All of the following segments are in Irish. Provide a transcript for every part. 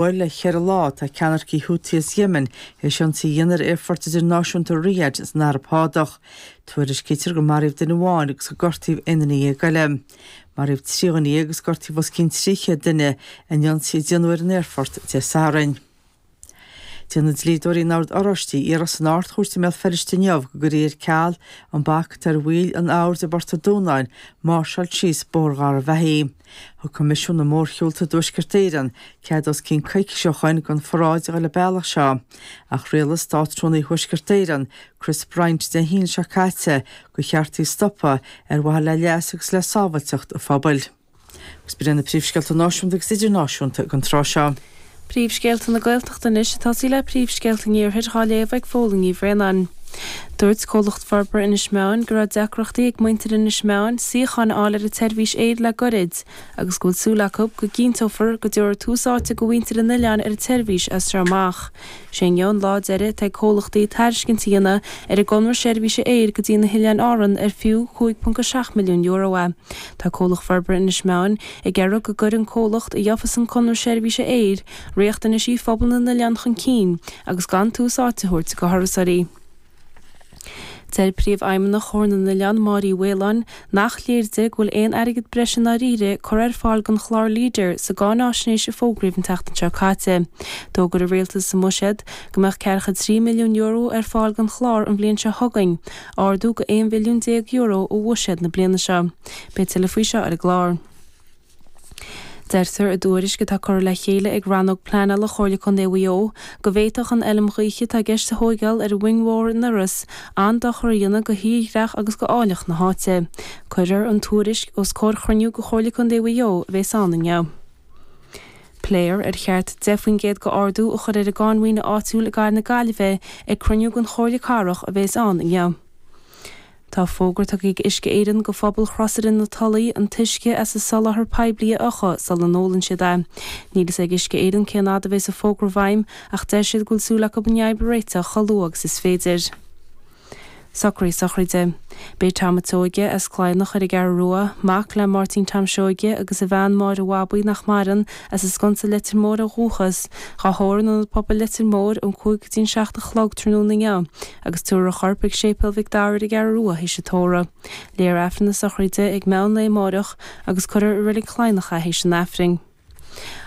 huair le cheithre lá, tá ceannaircigh Houthi as Yemen théis ionsaí a dhéanamh ar aerfort idirnáisiúnta Riyadh san Araib Shádach. Tuairiscítear gur maraíodh duine amháin agus gur gortaíodh aon duine dhéag eile. Maraíodh trí dhuine dhéag agus gortaíodh os cionn trí chéad duine in ionsaí a déanadh ar an aerfort Dé Sathairn. Déanfaidh dlíodóirí an Oird Oráistigh iarracht san Ard-Chúirt i mBéal Feirste inniu go gcuirfí ar ceal an bac atá ar bhaill an Oird i bPort a' Dúnáin máirseáil síos Bóthar Gharbh Achaidh. Thug Coimisiún na Mórshiúlta i dTuaisceart Éireann cead os cionn coicís ó shin don pharáid a dhul an bealach seo, ach rialaigh Státrúnaí Thuaisceart Éireann, Chris Bryant, Dé hAoine seo caite gur cheart í a stopadh ar mhaithe le leas agus le sábhailteacht an phobail. Agus b'in iad na príomhscéalta náisiúnta agus idirnáisiúnta ag an tráth seo. Príomhscéalta na Gaeltachta anois ag tosaí le príomhscéalta an iarthair dhá léamh ag Fódhla Ní Bhraonáin. Dúirt Comhlacht Forbartha Inis Meáin go raibh deacrachtaí ag muintir Inis Meáin suíocháin a fháil ar a tseirbhís aeir le goirid agus go bhfuil súil acu go gcinnteofar go dtabharfar tús áite go mhuintir an oileáin ar a tseirbhís as seo amach. Sé inniu an lá deiridh atá ag comhlachtaí tairiscint a dhéanamh ar an gconradh seirbhíse aeir go dtí na hOileáin Árann ar fiú €5.7 milliún é. Tá Comhlacht Forbartha Inis Meáin ag iarraidh go gcuirfeadh an comhlacht a gheofas an conradh seirbhíse aeir riachtanaisí phobal na n-oileán chun cinn agus gan tús áite a thabhairt go thurasóirí. Deir Príomhfheidhmeannach Chomhar na nOileán, Máire Uí Mhaoláin, nach léir di go bhfuil aon airgead breise i ndáiríre curtha ar fáil don chlár Leader sa gcáináisnéis a fógraíodh an tseachtain seo caite. D'fhógair an Rialtas sa mBuiséad go mbeadh €43 milliún ar fáil don chlár an bhliain seo chugainn, ardú go €11 mhilliún ó bhuiséad na bliana seo. Beidh tuilleadh faoi seo ar an gclár. Deirtear i dtuairisc atá curtha le chéile ag Rannóg Pleanála Chomhairle Contae Mhaigh Eo go bhféadfadh an fheilm ghaoithe atá i gceist a thóigeál ar Mhoing Mhór in Iorras an-dochar a dhéanamh go thírdhreach agus go áilleacht na háite. Cuirfear an tuairisc os comhair chruinniú de Chomhairle Contae Mhaigh Eo a bhéas ann inniu. Pléifear ar cheart 10 faoin gcéad go ardú a chur ar an gcáin mhaoine áitiúil i gcathair na Gaillimhe ag cruinniú den Chomhairle Cathrach a bhéas ann inniu. Tá fógra tugtha ag Uisce Éireann go phobal Chrosaire na Tulaí an t-uisce as a soláthar poiblí a fhiuchadh sula n-ólann siad é. Níl fhios ag Uisce Éireann cén fhad a bhéas an fógra i bhfeidhm ach deir siad go bhfuil súil acu an fhadhb a réiteach chomh luath agus is féidir. Socraí sochraide. Beidh Tom a' tSeoige, as Cladhnach ar an gCeathrú Rua, mac le Máirtín Tom Seoige agus a bhean Máire Bhabaí nach maireann, as an Sconsa Leitir Móir ó dhúchas, dhá thórramh in Ionad Pobail Leitir Móir ón cúig go dtí an seacht a chlog tráthnóna inniu. Agus tabharfar a chorp ag Séipéal Mhic Dara ar an gCeathrú Rua th'éis an tórraimh. Léifear Aifreann na sochraide ag meadhon lae amáireach agus cuirfear i Reilig Cladhnach é th'éis an Aifrinn.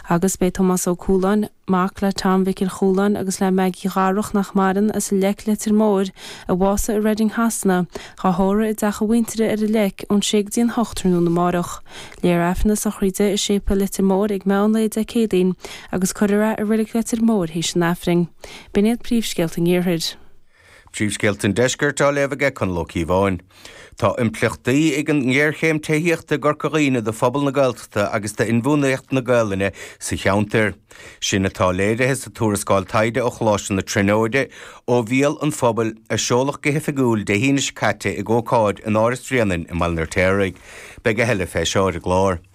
Agus beidh Tomás Ó Cualáin, mac le Tom Mhicil Chualáin agus le Meaigí Dharach nach maireann, as an Leic Leitir Móir, a bhásaigh i Reading Shasana, dhá thórramh i dteach a mhuintire ar an Leic ón sé go dtí an hocht tráthnóna amáireach. Léifear Aifreann na sochraide i Séipéal Leitir Móir ag meadhon lae Dé Céadaoin agus cuirfear é i Reilig Leitir Móir th'éis an Aifrinn. B'in iad príomhscéalta an Iarthair. Príomhscéalta an Deiscirt á léamh aige Conall Ó Cíobháin. Tá impleachtaí ag an ngéarchéim tithíochta i gCorca Dhuibhne do phobal na Gaeltachta agus d'inbhuanaitheacht na Gaelainne sa cheantar. Sin atá léirithe sa tuarascáil taighde ó Choláiste na Tríonóide, Ó Bhéal an Phobail, a seoladh go hoifigiúil Dé hAoine seo caite ag ócáid in Áras Bhréanainn i mBaile an Fheirtéaraigh. Beidh a thuilleadh fé seo ar an gclár.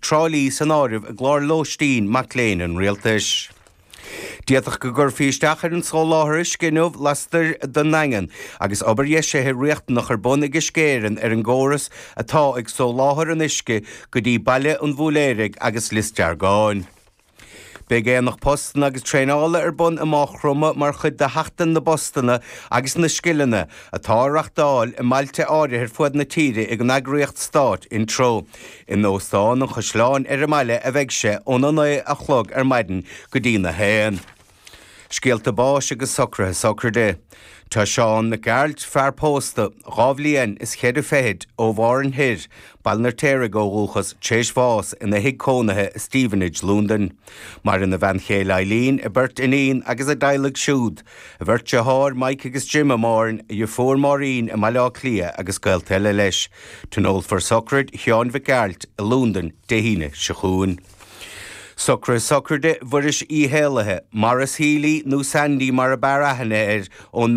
Trá Lí san áireamh i gclár lóistín mac léinn an rialtais. D'fhéadfadh go gcuirfí isteach ar an soláthar uisce inniu lastoir den nDaingean agus obair dheisithe riachtanach ar bun ag Uisce Éireann ar an gcóras atá ag soláthar an uisce go dtí Baile an Bhúlaeraigh agus Lios Deargáin. Beidh Aonach Postanna agus Traenála ar bun i Maigh Chromtha mar chuid de Sheachtain na bPostanna agus na Scileanna, atá á reachtáil i mbailte áirithe ar fud na tíre ag an eagraíocht stáit Intreo. In Óstán an Chaisleáin ar an mbaile a bheidh sé ón 9 a chlog ar maidin go dtí na 1. Scéalta báis agus socruithe sochraide. Tá Seán Mac Gearailt, fear pósta, dhá bhliain is cheithre fichid ó Mhárthain Thoir, Baile an Fheirtéaraigh ó dhúchas téis bháis ina thigh cónaithe i Stevenage, Lúndain. Maireann a bhean chéile Eileen, a beirt iníon agus a dteaghlaigh siúd, a bheirt deartháir Mike agus Jim i Márthain, a dheirfiúr Máirín i mBaile Átha Cliath agus gaolta eile leis. Tionólfar sochraid Sheáin Mhic Gearailt i Lúndain Dé hAoine seo chugainn. Socrú Sochraide Mhuiris Uí hÉalaithe, Maurice Healy nó Sandy mar ab fhearr aithne air, ón.